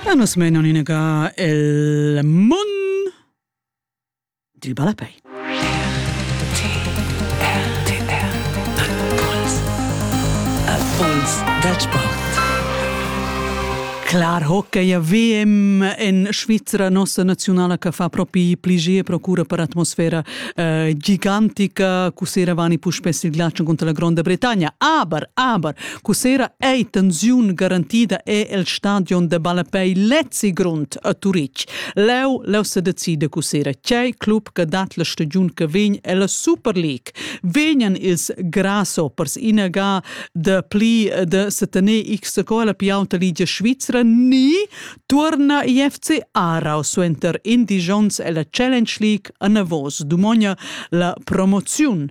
E nos menon in ga el mun dil balapei. Impuls dal sport. Clar hockey a VM en Svizzera, nossa nazionala che fa propi pligie procura per atmosfera eh, gigantica, cu se eravani puspè il ghiaccio contro la Gronda Bretagna. Aber, aber, Cussera ei tensiun garantida è el stadion de ballapei lezzi grond a Turitg. Leu leu se decide cussera tgei club che dat la stagiun che vegn ella Super League. Vegnan ils grasshoppers inaga de pli de setener x scola più auta ligia Svizzera ni turna IFC Aarau suenter indigions ella Challenge League a Navos dumogna la promoziun.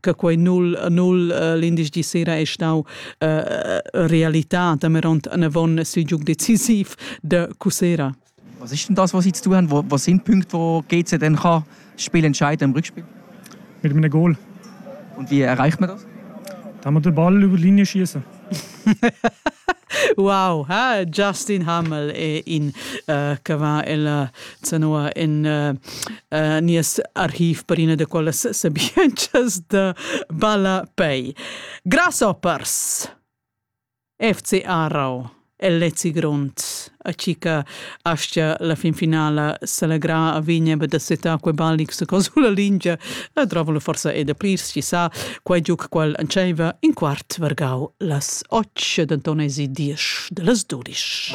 che quei null null l'indici sera è stau realità dameront avon sui decisiv de cusera Was ist denn das, was Sie zu tun haben? Was sind Punkte, wo GC denn kann Spiel entscheiden im Rückspiel? Mit einem Goal. Und wie erreicht man das? Dass wir den Ball über die Linie schießen. Wow, ha Justin Hamel è in uh, che va ella zanua in uh, uh, nies archiv per ina de quellas sabientschas de Ballapei. Grasshoppers, FC Aarau. El lezi grond, a chi cha aschia la fin finala s'allegra a vegner be da setar quei ballig sco sulla lingia, e drovolo forsa e da plirs chi sa, quei giuc qual entscheiva in quart vargau las och, denton esi diesch dallas dudisch.